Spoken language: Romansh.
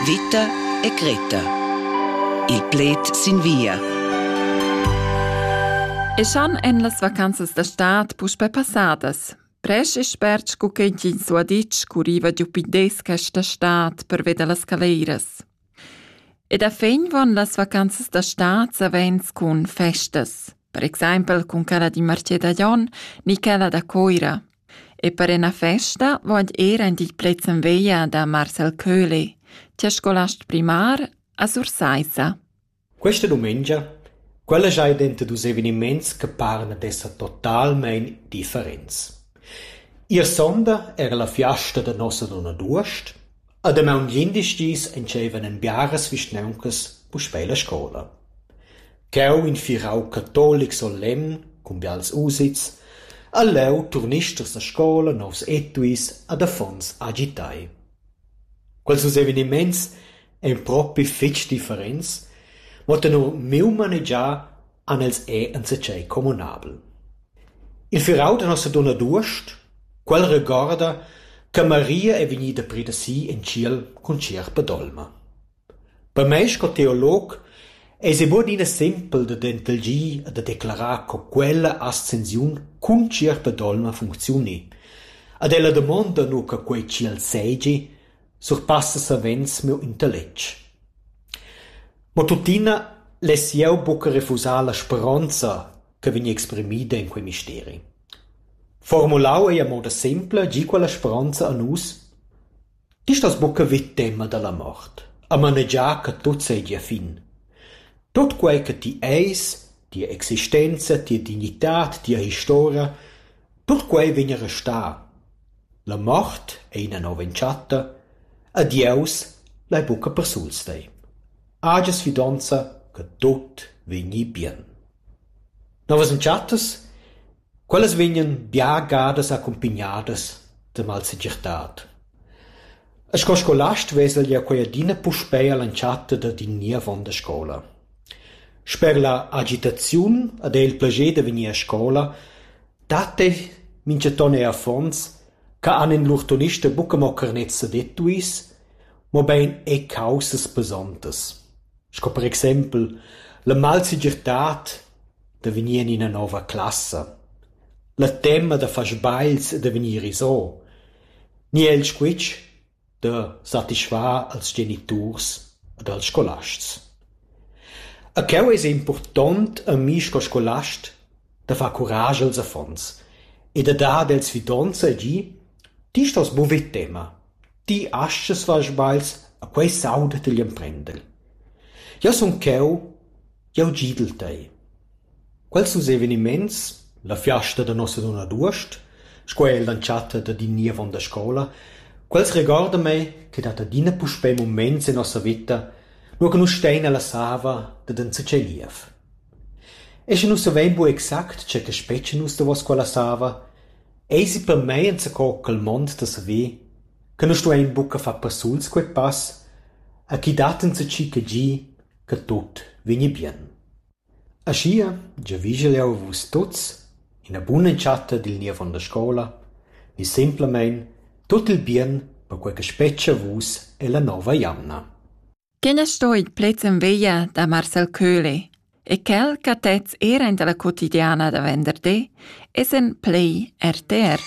Vita e Greta. Il pled sin via. Eschan en las vacanzas da stad puspè passadas. Presch e spert sco ch'entgins ho ditg, curriva giu pindes questa stad per veder las caleiras. Ed a fin von las vacanzas da stad savens cun festas, per exempel cun quella di Martier da Jon ni quella da Coira – E per ina festa vogl ir aint il plezzen veglia da Marcel Köhli, tia scolast primar, a Sursaissa. Questa dumengia quella giai denter dus eveniments che paran ad esser totalmein differents. Ier sonda era la fiasta da nossa donna d'uost, A damaun glindis dis entscheivan en biaras vischnauncas puspei la scola. Cheu in firau catolic solemn cun bials usits ha leu turnisters da scola, novs etuis ad affons agitai. Quels dus eveniments ein propi fetg differents, mo tenor miu manegiar han els er enzatgei communabel. Il firau da Nossadunna d'uost, quel regorda che Maria è vegnida pir da si en tschiel cun tschierpa d'olma. Per mei sco teolog eis ei buc ina sempel da dentelgir e da declarar co quella ascensiun cun tschierpa d'olma funcziuni. Ad ella damonda nu che quei tschiel seigi, surpassa savens miu intelletg. Mo tuttina less jeu buca refusar la speronza che vegn exprimida en quei misteri. Formulau ei a moda sempla gi quella speronza a nus: Ti stas buca vid tema dalla mort, a manegiar che tut seigi a fin. Tut quei che ti eis, tia existenza, tia dignitad, tia historia, tut quei vegn a restar. La mort ei ina nov'entschatta e Dieus lai buca persuls tei. Hagias fidonza che tut vegni bien. Novas entschattas? Quellas vegnan bia gadas accumpignadas da malsegirtad. E sco scolast vesel jeu quei adina puspei all'entschatta dad in ni avon da scola. Sper la agitaziun ed era il plascher da vegnir a scola Dat ei, mintgaton ei affons, che han in lur tonista buca mo carnets ed etuis, mobein era caussas pesontas, sco per exempel la malsegirtad da vegnir en ina nova classa, la tema da far sbagls e da vegnir iso. Ni el squitsch, da satisfar als geniturs ed als scolasts. E cheu eis ei impurtont a mi sco scolast da far curage als affons e da dar els fidonza e dir: Ti stos buca ver tema. Ti astgas far sbagls e quei sauda ti egl emprender. Jeu sun cheu Jeu gidel tei. Quels dus eveniments, la fiasta da Nossadunna d'uost, sco er l'entschatta dad in niev onn da scoula, quels regorda mei ch'ei dat adina puspei muments en nossa veta, nua che nus stein ella sava dad enzatgei niev. E sche nus savein buc exact tge che spetga nus davos quella sava, eisi per mei enzaco quel mond da saver che nus stuein buca far passuls quei pass, a chi dat enzatgi che gi che tut vegni bien. Aschia giavischel jeu a vus tuts ina bun'entschatta dil niev onn da scola ni semplamein tut il bien per quei che spetga a vus ella nova jamna. Quel ha stoi plaids en veglia da Marcel Köhle e quel che tez era in dalla quotidiana da venderdi es en play RTR.